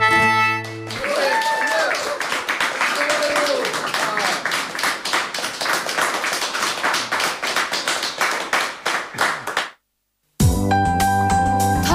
Tá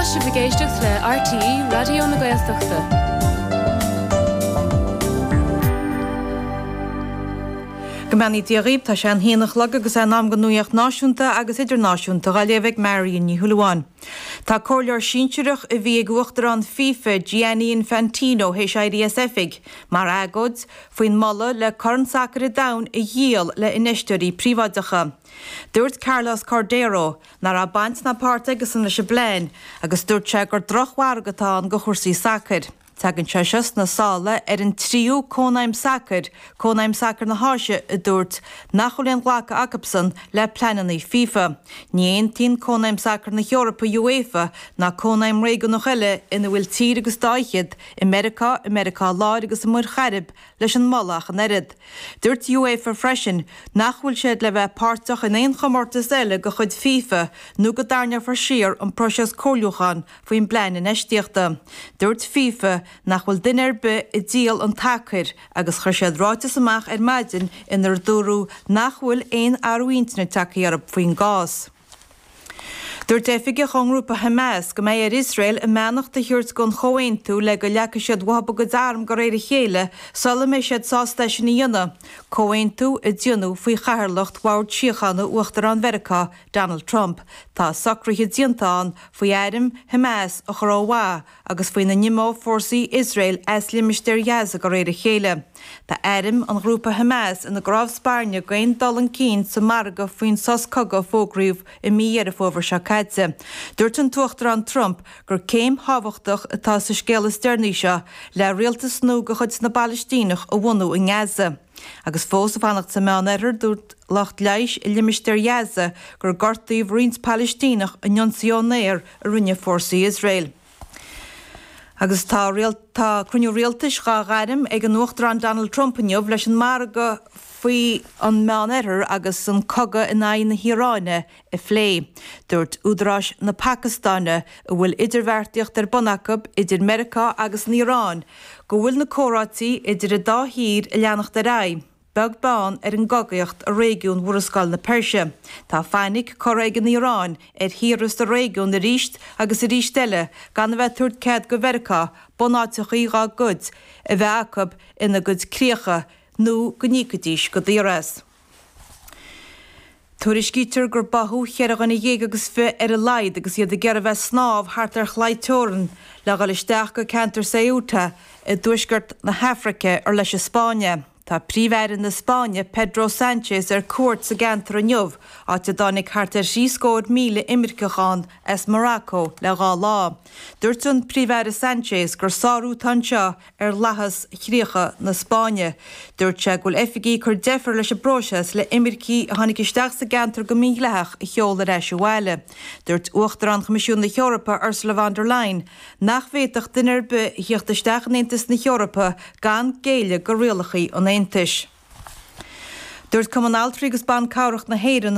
sibh ag éisteacht le RTÉ Raidió na Gaeltachta. Go mbeannaí Dia dhaoibh, tá sé an haon a chlog agus é in am don nuaíocht náisiúnta agus idirnáisiúnta dha léamh ag Marion Ní Shúilleabháin. Tá comhairleoir sinsearach a bhí ag Uachtarán fifa, Gianni Infantino, théis éirí as oifig, mar agóid faoin moladh le Corn Sacair an Domhain a dhíol le infheisteoirí príobháideacha. Dúirt Carlos Cordeiro ná raibh baint ná páirt aigesan leis an bplean agus dúirt sé gur droch-mhargadh atá ann do chúrsaí sacair. Tagann sé seo sna sála ar an tríú Cónaidhm Sacair, Cónaidhm Sacair na hÁise, a dúirt nach bhfuil aon ghlacadh acusan le pleananna fifa. Ní aontaíonn Cónaidhm Sacair na hEorpa, UEFA, ná cónaidhm réigiúnach eile ina bhfuil tír agus dá fhichead, i Meiriceá, i Meiriceá Láir agus i Muir Chairib, leis an moladh ach an oiread. Dúirt UEFA freisin nach bhfuil siad le bheith páirteach in aon chomórtas eile de chuid fifa nó go dtarrneofar siar an próiseas comhairliúcháin faoin bplean infheistíochta. Dúirt fifa nach bhfuil duine ar bith ag díol an tsacair agus chuir siad ráiteas amach ar maidin inar dúradh nach bhfuil aon athrú intinne tagtha orthu faoin gcás. Dúirt oifigeach ón ngrúpa Hamas go mbeidh ar Iosrael a mbeannacht a thabhairt don chomhaontú le go leagfaidh siad uathu a gcuid arm de réir a chéile sula mbeidh siad sásta é sin a dhéanamh, comhaontú a déanadh faoi chathaoirleacht Bhord Síochána Uachtarán Mheiriceá Donald Trump, tá socruithe déanta ann faoi airm Hamas a chur ó mhaith agus faoina n-imeodh fórsaí Iosrael as limistéar Ghaza de réir a chéile. Tá airm an ghrúpa Hamas ina gcnámh spairne d'aon dul chun cinn sa mhargadh faoin sos cogaidh a fógraíodh i mí Dheireadh Fómhair seo caite. Dúirt an tUachtarán Trump gur chéim thábhachtach atá sa scéala is deireanaí seo le rialtas nua de chuid na bPalaistíneach a bhunú i nGaza. Agus fós ag fanacht sa Meán Oirthear, dúirt lucht leighis i limistéar Ghaza gur gortaíodh roinnt Palaistíneach in ionsaí ón aer a rinne fórsaí Iosrael. Agus tá tá cruinniú rialtais dhá ghairm ag an Uachtarán Donald Trump inniu leis an margadh faoi an Meán Oirthear agus an cogadh in aghaidh na hIaráine a phlé. Dúirt údaráis na Pacastáine, a bhfuil idirbheartaíocht ar bun acu idir Meiriceá agus an Iaráin, go bhfuil na comhráití idir an dá thír ag leanacht ar aghaidh, beag beann ar an gcogaíocht i réigiún Mhurascaill na Peirse. Tá fainic curtha ag an Iaráin ar thíortha sa réigiún arís agus arís eile gan a bheith ag tabhairt cead do Mheiriceá bunáiteachaí dá gcuid a bheith acu ina gcuid críocha nó go n-íocfaidís go daor as. Tuairiscítear gur báthadh cheithre dhuine dhéag agus fiche ar a laghad agus iad ag iarraidh bheith ag snámh thart ar chlaí teorann le dhul isteach go ceantar Ceuta i dtuaisceart na hAfraice ar leis an Spáinn é. Tá Príomh-Aire na Spáinne, Pedro Sánchez ar cuairt sa gceantar inniu, áit a dtáinig thart ar thrí scór míle imirceach ann as Morocco le dhá lá. Dúirt an Príomh-Aire Sánchez gur sárú atá anseo ar fhlaitheas chríocha na Spáinne. Dúirt sé go bhfuil oifigigh ag cur deifir leis an bpróiseas le himircigh a tháinig isteach sa gceantar go mídhleathach a sheoladh ar ais abhaile. Dúirt Uachtarán Choimisiún na hEorpa, Ursula von der Leyen, nach bhféadfadh duine ar bith a thíocht isteach in Aontas na hEorpa gan géilleadh do rialacha an Aontais. Dúirt Cumann Altraí agus Ban Cabhrach na hÉireann,